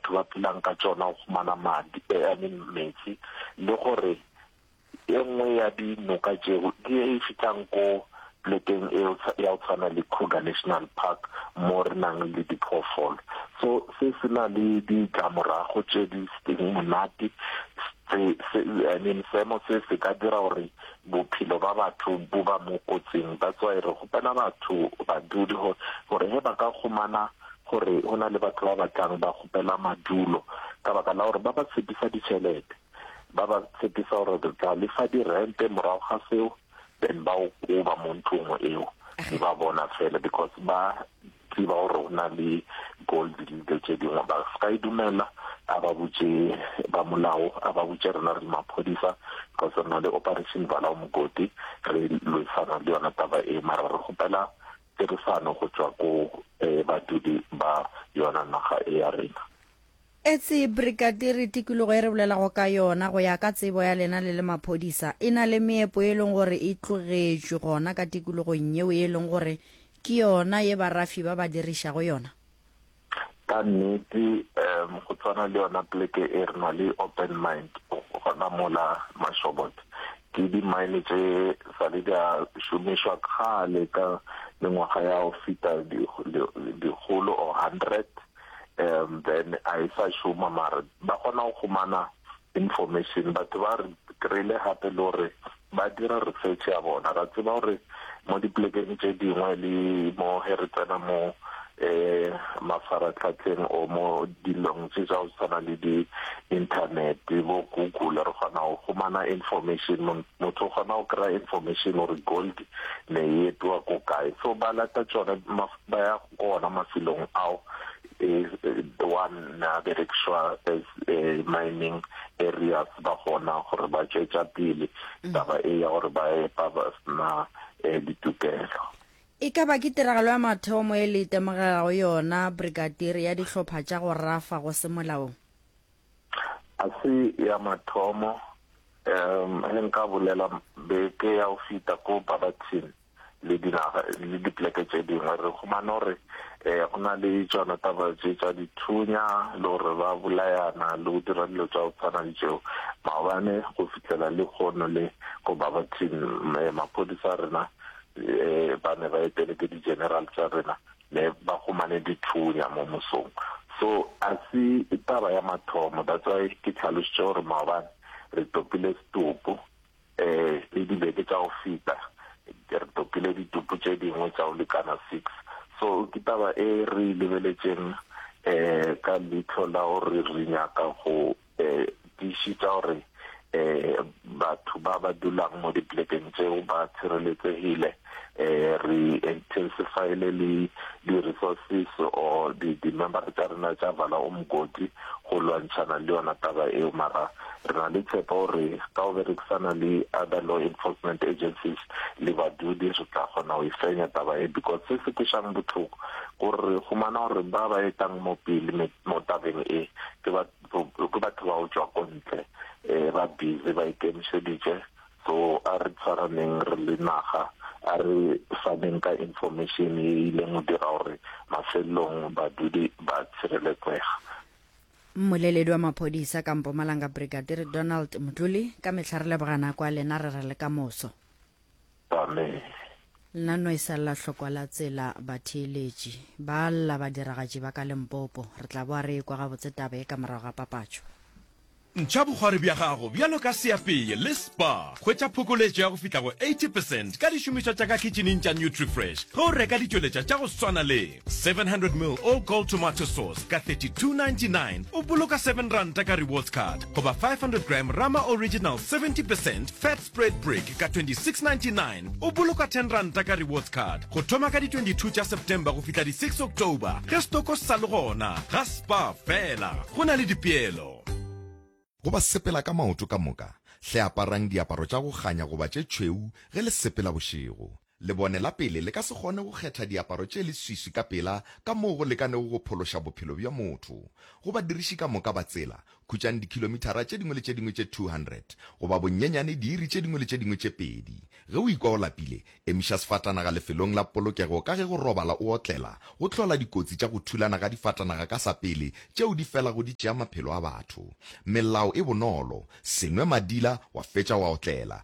batho ba phelang ka tšona go humana madi, I mean meetse, le gore e nngwe ya di noka tšeo ke ye e fihlang ko plekeng e ya go tshwana le Kruger National Park mo re nang le diphoofolo. So se se na le ditlamorago tše di seng monate, se se I mean seemo se se ka dira gore bophelo ba batho bo ba mo kotsing. That's why re kgopela batho, badudi gore he ba ka humana gore go na le batho ba ba tlang ba kgopela madulo ka baka la gore ba ba tshepisa ditšhelete ba ba tshepisa gore re tla lefa dirente morago ga seo then ba o koba mo ntlong eo di ba bona fela because ba tseba gore go na le gold le dilo tse dingwe ba se ka e dumela a ba butše ba molao a ba butše rena re maphodisa because re na le operation valao mogodi re lwesana le yona taba e mara re gopela tirisano go tšwa go badudi ba yona naga e ya rena. Etse Brigadiri, tikologo e re bolelago ka yona, go ya ka tsebo ya lena le le maphodisa, e na le meepo ye e leng gore e tlogetšwe gona ka tikologong yeo e leng gore ke yona ye barafi ba ba dirišago yona? Ka nnete um go tshwana le yona poleke e re na le open mind gona mola Mashobotla ke di-mine tse sa le di a šomišwa kgale ka mengwaga ya go feta dikgolo or hundred um then a e sa šoma mara ba kgona go humana Information, batho ba re kry-ile gape le gore ba dira research ya bona. Ra tseba gore mo diplekeng tše dingwe le mo ge re tsena mo um mafaratlhatlheng o mo dilong tše tsa go tshwana le di-internet bo google re kgona go humana information motho o kgona go kry-a information gore gold ne e epiwa ko kae so ba lata tsone ba ya Go ona mafelong ao, wa nna a berekišwa as mining areas, ba kgona gore ba tšwetša pele taba e ya gore ba epa ba sena ditokelo. E ka ba ke tiragalo ya mathomo e le itemogegago yona, Brigadier, ya dihlopha tša go rafa go se molaong? A se ya mathomo ge nka bolela beke ya go feta ko Barberton le dinaga le dipleke tše dingwe re humana gore um go na le tsona taba tše tša dithunya le gore ba bolayana le go dira dilo tša go tshwana le tšeo maobane go fihlela le kgono le ko babatin maphodisa rena um ba ne ba etele ke di-general tsa rena ne ba humane dithunya mo mosong. So a se taba ya mathomo that's why ke tlhalositše gore maobane re topile setopo um le dibeke tša go feta re topile ditopo tše dingwe tša go lekana six so ke taba e re lebeletšeng um ka leitlho la gore re nyaka go eh, tiišitša gore eh, batho ba ba dulang mo diplekeng tseo ba tshireletsegile eh, re intensifyile le di-resources or di-member tša rena tša vala o mokoti go lwantšhana le yona taba eo mara re na le tshepo gore ka o berekisana le other law enforcement agencies le badudi re tla kgona go e fenya taba e because se se kwešang botlhoko gore re humana gore ba ba etang mo pele mo tabeng e ke ba ke batho ba go tšwa ko ntle um ba busy ba ikemišeditše so a re tshwaraneng re le naga a re faneng ka information e ileng go dira gore mafelelong badudi ba tshireletsega mmoleledi wa maphodisa ka mpomalanga brigadir donald motlole ka metlha re lebogana kwa lena re re le ka moso Amen. Nna no e sa lla hlokwa la tsela batheeletši ba lla badiragatši ba ka Limpopo. Re tla boa re ekwa gabotse taba e ka morago ga papatšo. Ntšha bogwari bja gago bjalo ka seapeye le spa. Hwetša phokoletšo ya go fihla go 80 percent ka dišomišwa tša ka khitšhineng tša Nutrifresh ge o reka ditšweletša tša go swana le 700 ml All Gold Tomato Sauce ka 32.99, o boloka seven ranta ka Rewards Card, goba 500 gram Rama Original 70 percent fat Spread Brick ka 2699 o boloka 10 ranta ka rewards card go thoma ka di 22 tša September go fihla di 6 October ge stoko se sa le gona ga spa fela go na le dipeelo. Go ba sepela ka maoto ka moka, hle aparang diaparo tša go kganya goba tše tšhweu ge le sepela bošego. Lebone la pele le ka se kgone go kgetha diaparo tše leswiswi ka pela ka moo go lekanego go phološa bophelo bja motho. Go badiriši ka moka ba tsela, khutšang dikhilomithara tše dingwe le tše dingwe tše 200, goba bonnyenyane diiri tše dingwe le tše dingwe tše pedi. Ge o ikwa o lapile, emiša sefatanaga lefelong la polokego ka ge go robala o otlela go hlola dikotsi tša go thulana ga difatanaga ka sa pele tšeo di felago di tšea maphelo a batho. Melao e bonolo, Se nwe madila wa fetša wa otlela.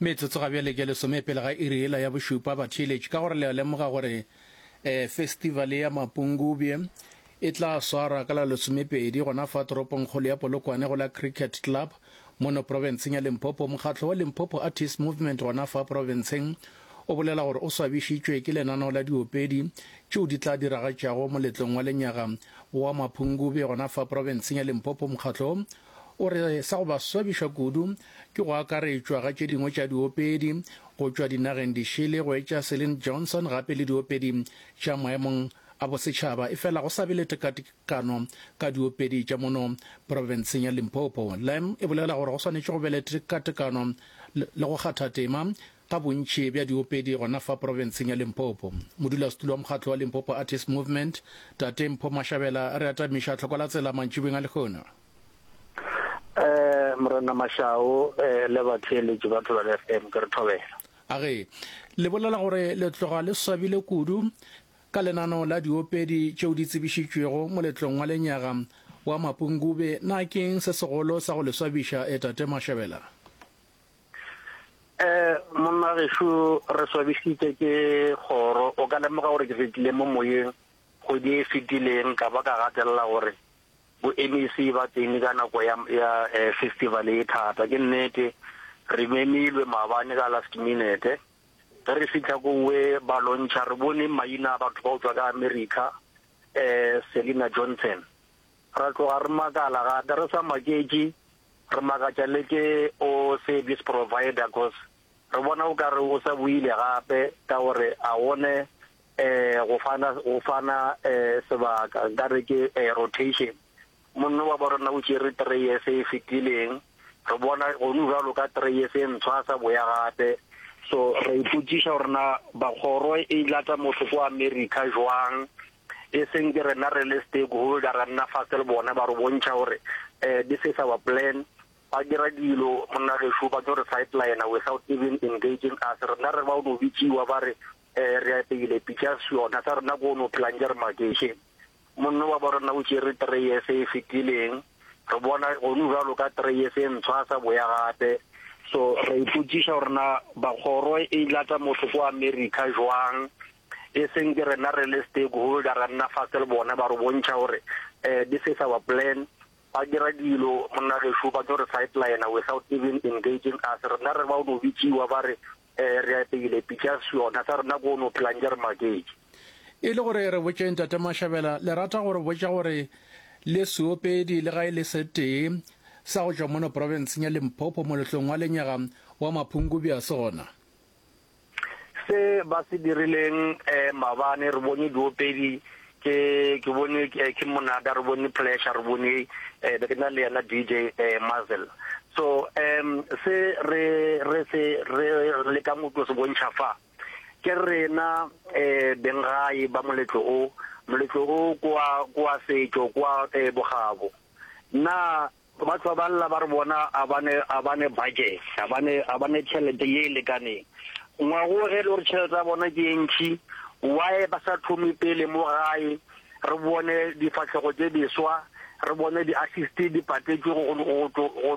Metsotso ga bjale ke lesome pele ga iri ela ya bošupa batheeletši ka gore le a lemoga gore eh, festivale ya mapungubje e tla swara ka la lesomepedi gona fa toropongkgolo ya polokwane go la cricket club mono profenseng ya limpopo mokgatlo wa limpopo artist movement gona fa profenseng o bolela gore o swabišitšwe ke lenaneo la diopedi tšeo di tla diragatšago moletlong wa lenyaga wa mapungubje gona fa profenseng ya limpopo mokgatlo O re sa go ba swabiša kudu ke go akaretšwa ga tše dingwe tša diopedi go tšwa dinageng dišele go etša Celine Johnson gape le diopedi tša maemong a bosetšhaba efela go sa be le tekatekano ka diopedi tša mono profenseng ya Limpopo. Lam e bolela gore go swanetše go be le tekatekano le go kgatha tema Ka bontši bja diopedi gona fa profenseng ya Limpopo, modulasetulo wa mokgatlo wa Limpopo Artists Movement, Tate Mpho Mashabela re atamiša tlhoko la tsela mantšibeng a lehono. Morena Mashau le batheeletši ba Thobela FM, ke re thobela. A re le bolela gore le tloga le swabile kudu ka lenano la diopedi tšeo di tsebišitšwego moletlong wa lenyaga wa Mapungube, na ke'ng se segolo sa go le swabiša, e Tate Mashabela? Ee, monna gešu, re swabišitše ke kgoro. O ka lemoga gore ke fetile mo moyeng kgwedi e fetileng ka ba ka gatelela gore bo-MEC ba tsene ka nako ya, ya eh, festival e thata. Ke nnete, re memilwe maabane ka last minute. Ge re fihla kowe ba lontšha, re bone maina a batho ba go tšwa ka America, eh, Selina Johnson. Ra tloga re makala ga ka re sa maketše, re makatša le ke o service provider cos re bona o ka re o sa boile gape ka gore a one um go fana go fana um sebaka nka re ke um rotation. Monno wa borena o tšere three years e fetileng, re bona gonu bjalo ka three years e ntshwa a sa boya gape. So ra ipotšiša gore na ba kgoro e lata motho ko America jwang e seng ke rena re le stakeholder ra nna fatshe le bone ba re bontšha gore um this is our plan ba dira dilo monna gešo ba tlo re sideline without even engaging us rena re ba o no bitsiwa ba re um re apeile pictures yona sa rena ko o no phelang ke re makešeng monno wa bo rena o tšere three years e fetileng re bona gonu jalo ka three years e ntshwa a sa boya gape so re ipotsiša gore na bakgoro e lata motho ko america jwang e seng ke rena re le stakeholder ra nna fatshe le bone ba re bontšha gore um this is our plan ba dira dilo monna gešo ba tlo re sideline without even engaging us rena re ba o no bitšiwa ba re um re apeile pictures yona sa rena ko o no phelang ke re maketše e le gore re botšeng tate mashabela le rata gore botša gore le seopedi le ga e le setee sa go tšwa mono porofenseng ya limpopo moletlong wa lenyaga wa maphungubi a sona Se ba se dirileng eh, mabane re bone diopedi ke ke bone ke ke monada re bone pleasure re bone eh be ke na le yena DJ eh Mazel so em se re re se re le ka motho se bontšha fa ke rena eh bengae ba moletlo o moletlo o kwa kwa setšo kwa eh bogabo na Batho ba ba lla ba re bona a ba ne, a ba ne budget, a ba ne, a ba ne tšhelete ye e lekaneng. Ngwago ge e le gore tšhelete ya bona ke e ntši, why ba sa thome pele mo gae, re bone difahlego tše diswa, re bone di-assist di patetšwe go, go, go, go, go,